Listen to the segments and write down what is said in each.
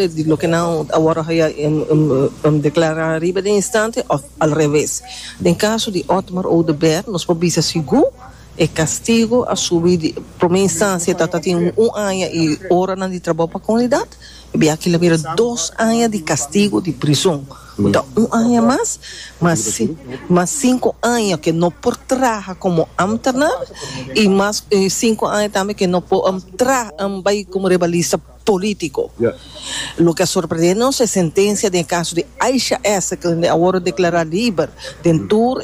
di loke nan a wòrdu haya deklará riba den instante òf alreves. Den kaso di Otmar Oduber nos por bisa sigur e kastigu a subi di promé instansia ta ta tin un aña i oranan di trabou pa komunidat, e biaki'l a bira dos aña di kastigu di prizon, ku ta un aña mas, mas mas sinku aña ke no por traha komo ámternar i mas sinku aña tambe ke no por traha bai komo rebalista. político. Loke a sorprendé nos e sentencia den e caso di Aisha S. kende a worde declará liber den tur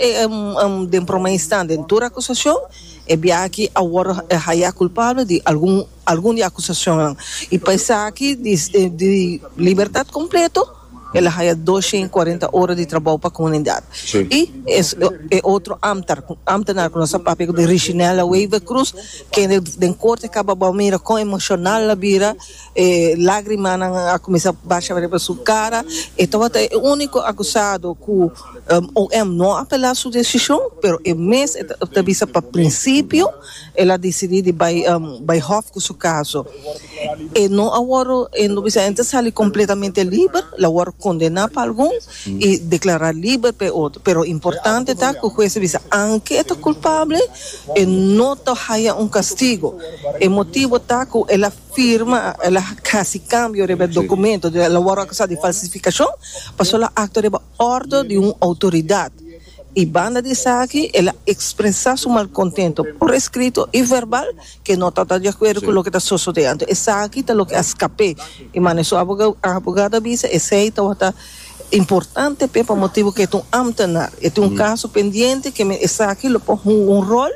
den prome instan den tur acusacion, e bia aki a worde haya culpable di algun algun di acusacionnan y pa esaki di di libertad completo. El a haya dos shen i kuarenta ora di trabou pa komunidat. I e otro amtar, amtenar ku nos a papia ku Richinella Wever Cruz, kende den korte kaba bou mira kon emoshonal a bira, e lagrimanan a kuminsá basha riba su kara. E tabata e úniko akusado ku OM no a apelá su desishon, pero e mes ta bisa pa prinsipio. El a decidí di bai bai hòf ku su kaso. E no a wòrdu, e lo bisa, e no ta sali kompletamente liber, lo a wòrdu kondená pa algun i deklará liber pa e otro. Pero importante ta ku hues a bisa aunke e ta kulpabel, e no ta haya un kastigu. E motibu ta ku el a firma, el a hasi kambio riba e dokumentu, el a wòrdu akusá di falsifikashon, pasó el a aktua riba òrdu di un outoridat. i banda di esaki el a ekspresá su malkontentu por eskrito i verbal ke no ta ta di akuerdo ku loke ta sosodé. Anto esaki ta loke a skap'é i manera su abogado a bisa esei tabata importante p'e pa motibu ke e ta un ámtenar, e tin un kaso pendiente ke men esaki lo por hunga un ròl.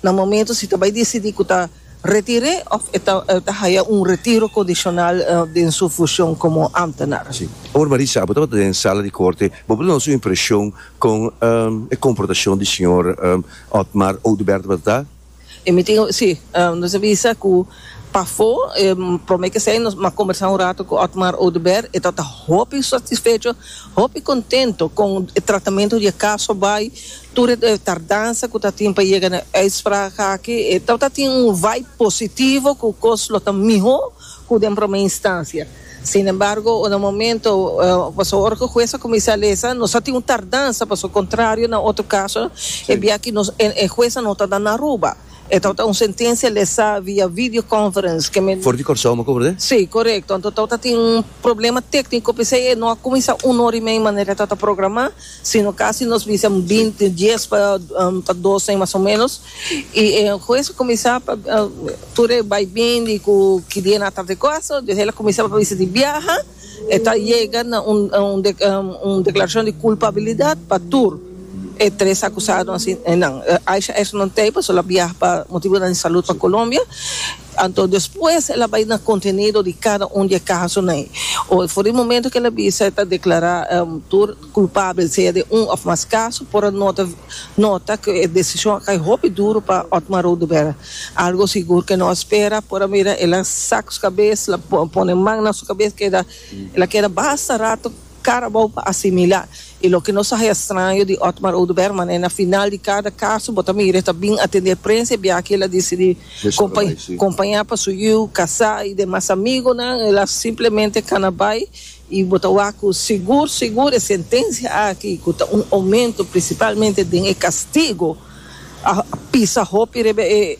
na momento si ta bai disidí ku ta retir'é òf e ta e ta haya un retiro kondishonal den su fushon komo ámtenar. Sí. Awor Marisa, bo tabata den sala di korte, bo por duna nos un impreshon kon e komportashon di señor Otmar Oduber tabata ta? E mi tin, sí, nos a bisa ku pafó promé k'esei nos a kombersá un rato ku Otmar Oduber, e tabata hopi satisfecho, hopi kontento kon e tratamentu di e kaso bai, Tur e tardansa ku ta tin pa yega na e uitspraak aki e tabata tin un vibe positivo ku kos lo ta mihó ku den promé instansia. Sinembargo unda momento paso ora ku hues a kuminsá a lesa nos a tin un tardansa paso kontrario na otro kaso e bia aki nos e hues no ta na Aruba e tabata un sentensia lesá via video conference ke mi For di Kòrsou amo kobra den? Si, korekto. Anto tabata tin un problema tékniko p'esei e no a kuminsá un ora i media manera e tabata programá. sino casi nos bisa un binti dies pa pa dosen mas o menos y e hues a cuminsa pa tur e bay bin di cu ki dia nan tarde cosa dios e la cuminsa pa bisa di biaha e ta yega na un un un declaracion di culpabilidad pa tur e tres acusado nan Aisha Exner Teipes lo a biaha pa motibonan di salud pa Colombia. Anto despues el a bai na contenido di cada un di e casonan ei. Oe for di momento cu el a bisa e ta declara tur culpabel sea di un of mas caso por a nota nota cu e decision a cay hopi duro pa Otmar Oduber. Algo sigur cu nos spera por a mira el a saca su cabes, el a pone man na su cabes keda el a keda basta rato. Carabao pa asimilá. I loke nos a haña straño di Otmar Oduber, mané na final di kada kaso bo ta mira e ta bin atendé prensa i biaha ki el a disidí kompañá pa su yiu kasá i demas amigonan el a simplemente kana bai i bo ta wak ku sigur sigur e sentensia aki ku ta un omento prinsipalmente den e kastigo a pisa hopi riba e